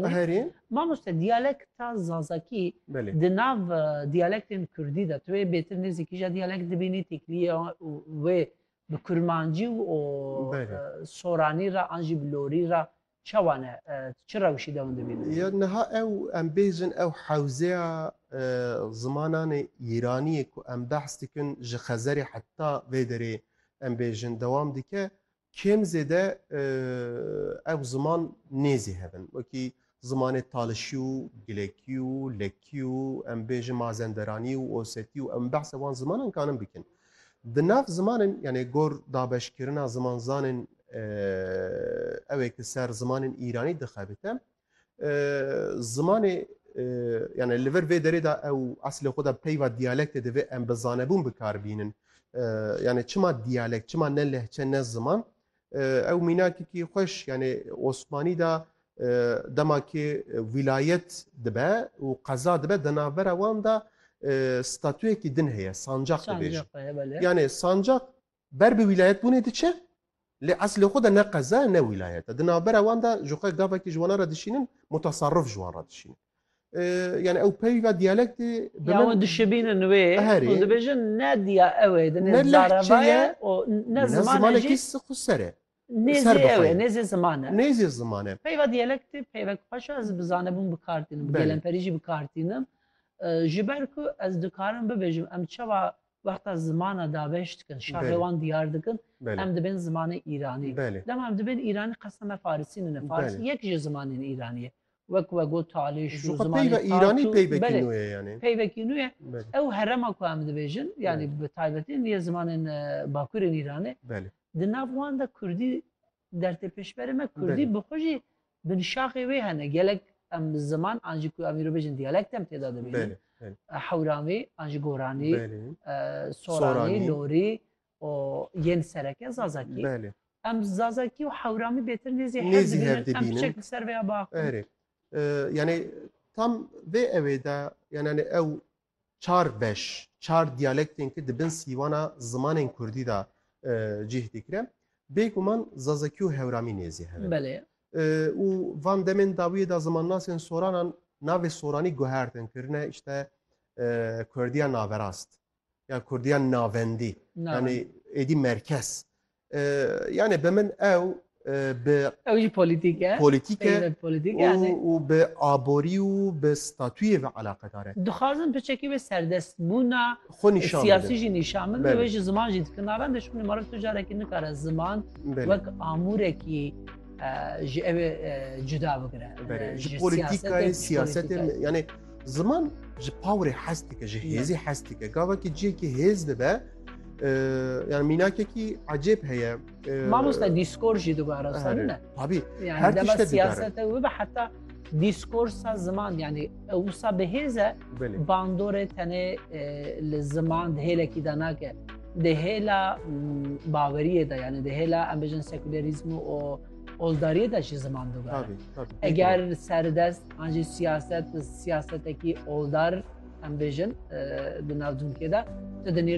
Herî. Mamoste diyalekta Zazakî di nav diyalektên Kurdî de tu wê bêtir nêzîkî jî diyalekt dibînî têkilîya wê bi kurmancî û soranî re an jî bi lorî re çawa ne çi rewşî de hûn dibînin? Ya niha ew em bêjin ew hewzeya zimananê îraniyê ku em behs dikin ji xezerê heta vê derê em bêjin dewam dike Kêm zêde ev ziman nêzî hev in. Wekî zimanê talişî û gilekî û lekî û em bêjin mazenderanî û osetî û em behsa wan zimanan karin bikin. Di nav zimanên yanê gor dabeşkirina zimanzanên ew ê ki ser zimanên îranî dixebite Zimanê yani li vir vê derê de ew eslê xwe de peyva diyalektê divê em bi zanebûn bikar bînin. Yani çima diyalekt, çima ne lehçe ne ziman? Ew mînakekî xweş yani Osmanî de dema ki wîlayet dibe û qeza dibe di navbera wan de statuyekî din heye, sancaq dibêjin. Yani sancaq ber bi wîlayetbûnê diçe lê eslê xwe de ne qeza ye ne wîlayet e. Di navbera wan de ji xwe gavekî ji wana re dişînin mutasarrif ji wan re dişînin. Yani ew peyva diyalektê bi Ya min- hûn dişibînin wê, Herê. hûn dibêjin ne diya ew ê, Ne dinê lehçe zareva ye ye û ne Ne ziman e jî. zimanekî si xwe ser e. Nêzî ser ew e, bixweyne. nêzî ziman e. Nêzî ziman e. Peyva diyalektê peyvek xweş e, ez bi zanebûn bi kar tînim, bi Belê. gelemperî jî bi kar tînim. E, Ji ber ku ez dikarim bibêjim em çawa wexta zimana dabeş dikin, şaxê Belê. wan diyar dikin, Belê. em dibên zimanê îranî. Belê. Dema em dibên îranî qesa me farisî nîne, farisî Belê. yek ji zimanên îranî ye. Wek we got talê şu, Ji xwe zimanê peyva tat îranî û- peyvekî Belê. nû ye yanî. Peyvekî nû ye. Belê. Ew herema ku em dibêjin, yanî bi taybetî niyê zimanên e, bakurên îranê, Belê. Di nav wan de Kurdî dertê pêşberê me Kurdî bi xwe jî binşaxê wê hene. Gelek em ziman an jî ku em îro bêjin diyalekt em têda dibînin. Hewranî an jî Goranî, Soranî, Lorî û yên sereke Zazakî. Em Zazakî û Hewramî bêtir nêzî hev dibînin. Em çek li ser vê ya biaxivin. Erê. Yanî tam vê ewê de yanî ew çar beş, çar diyalektên ki di bin sîwana zimanên kurdî de cih dikire, bêguman zazakî û hewramî nêzî hev in. Belê. Û van demên dawiyê de zimannasên soranan navê soranî guhertin kirine îşte kurdiya naverast ya kurdiya navendî yanî êdî merkez. Yani bi min ew bi Ew jî polîtîk e. Polîtîk e û bi aborî û bi statûyê ve eleqedar e. Dixwazin piçekî wê serdestbûna siyasî jî nîşan bidin û wê ji ziman jî dikin nava em dê ji ber meriv tu carekî nikare ziman wek amûrekî ji ew ê cuda bigire. Ji polîtîkayê siyasetê yanê ziman ji pawirê hes dike ji hêzî hes dike. Gavakî cihekî hêz dibe yani mînakekî ecêb heye mamosta dîskor jî dibara ne tabî her tişte siyasete wî ve heta diskursa ziman yani wisa bi hêze bandorê tenê li ziman di hêlekî de nake di hêla baweriyê de yani di hêla em bijin sekülerizm û oldariyê de jî ziman dibe eger serdest an jî siyaset siyasetekî oldar em bijin di navcunkê de tu di nêrî